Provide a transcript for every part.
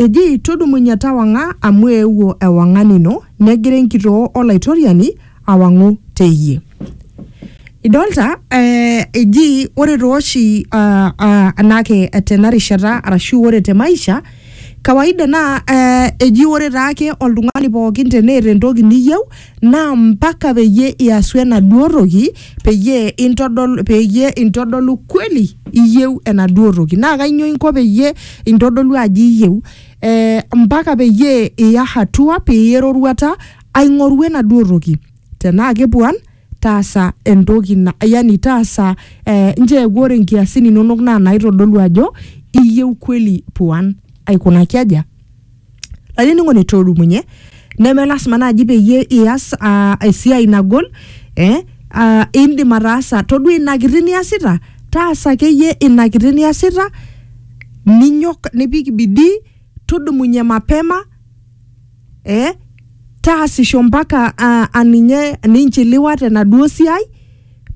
Eji, Tudumunye tawang'a amu eewuo ewang'an ino, negira enkitoo o Laitoriani awang'u te iyie. Idolta eh, eji ore tooshi ah, ah, anake tena rishata arashu ore te maisha kawaida naa eh, eji ore taake oltung'ani pookin teneeta entoki niyieu naa mpaka peyie iasu enaduo toki peyie intodol peyie intodolu kweli iyieu enaduo toki naa kainyoo inko peyie intodolu ajo iyieu eh, mpaka peyie iya hatua piiya eroruata aing'oru enaduo toki tenaa kepuan taasa entoki na yani taasa eh, ncheeku ore nkiasin inonok naa naitodolu ajo iyieu kweli puan aikunaki aja lainining'oni toorumunye neme lasima naaji peyie ias uh, esiai nagol eh, uh, indim ataasa todua ina kiti niasita taasa akeyie ina kiti niasita ninyok nipik bidii tudumunye mapema eh, taasisho mpaka uh, aninye ninchiliwa tenaduo siai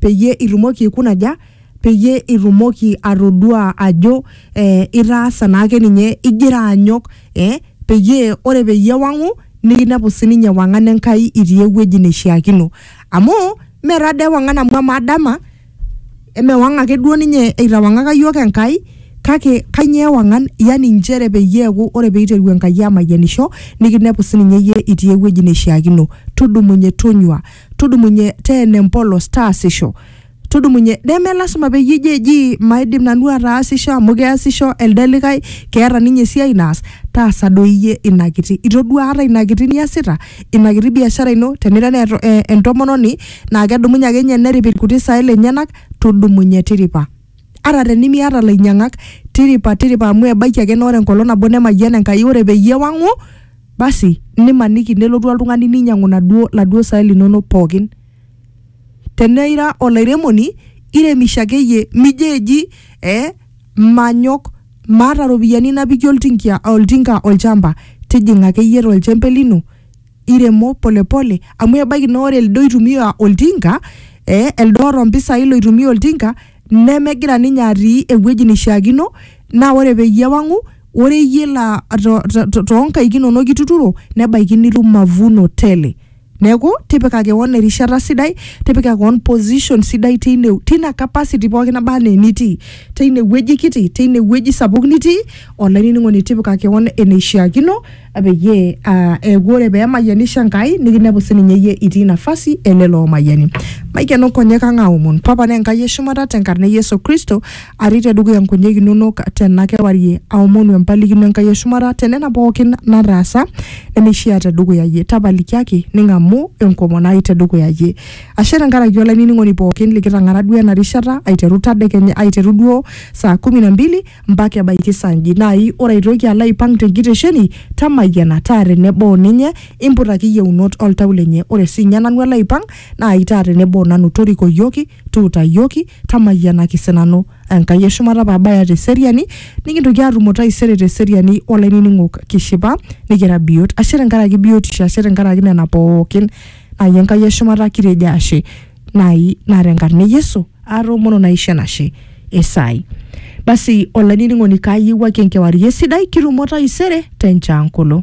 peyie itumoki aikuna aja peyie itumoki atodua ajo eh, itaasa naake ninye igira anyok eh, peyie ore peyie ewang'u nikinepu sininye ewang'an Enkai itii ewueji neishiakino amu mee taa dii ewang'an amu amaa dama emewang ake duo ninye eitawang'aka yiok Enkai kake kanyio ewang'an yani inchere peyie eeku ore peiteru Enkai amayianisho nikinepu sininye iyie itii ewueji neishiakino tudumunye tonyua tudumunye teena empolos taasisho tudumunye neme lasima peyie ijo eji maidim nanu ataasisho amu keasisho elde likae keeta ninye esiai naas taasa doi iyie ina kiti itodua ata ina kiti niasita ina kiti biashara ino tenira naa eto- eh, entomononi naa kedumunye ake ninye nerip irkuti saai lenyenak tudumunye tiripa ata tenimiata lainyiang'ak tiripa tiripa amu ebaiki ake naa ore enkolong nabo nemayiana enkai ore peyie ewang'u basi nimaniki nelotu oltung'ani ninyiang'u naduo laduo saai linonok pookin Tenaa ira olairemoni, iremisho ake iyie. Mijo eji eh manyok, maata ropiyiani napikie oltinkia oltinka olchamba. Tijing'a ake iyie to lchempe lino, iremo pole pole amu ebaiki naa ore elde oitumia oltinka eh elde oota mpisai loitumia oltinka nemegira ninye atii ewueji neishiakino naa ore peyie ewang'u ore iyie laa to to toonkaik inonok ituturo nebaiki nitum mavuno tele Neeku tipika kewon erishata sidai, tipika kewon position sidai teine tina capacity pooki naba anaa enitii, teine wueji kiti, teine wueji sapuk nitii, olainining'oni tipika kewon eneishiakino peyie aa eeku ore pee emayianisho Enkai nikinepu sininye iyie itii nafasi e lelo oomayiani. Maikeno nkonyek ang' aaomon. Papa naa Enkai e shumata tenkarna e Yesu Kristo. atii tedukuya nkonyek inonok tena kewarie aomonu empalikino Enkai e shumata tenena pookin nataasa nemeishia tedukuya yie tapalikiaki ning'amu enkomon ai tedukuya yie ashe tenkaraki olainining'oni pookin likitang'ara duo ena rishata aiteru tadekenya aiteru duo saa kumi na mbili mpaka ebaiki saa nji nai ore aitoki alo aipang tenkitesheni tamayiana taa tenebo ninye imputaki yieunot oltau lenye ore siinye nanu alo aipang nai taa tenebo nanu torikoyioki Tuutayioki, tamayianaki sinanu, Enkai e shumata pee abaya te seriani, nikintoki aatumo taisere te seriani o lainining'ok kishipa nikira biot. Ashe tenkaraki biotisho, ashe tenkaraki nena pookin. Naai Enkai e shumata kitejo ashe. Naai naa tenkarna e Yesu aatoomono naisho enashe e saai. Basi olainining'oni kaayiewuaki enkewarie sidai, kitumo taisere te nchaangolo.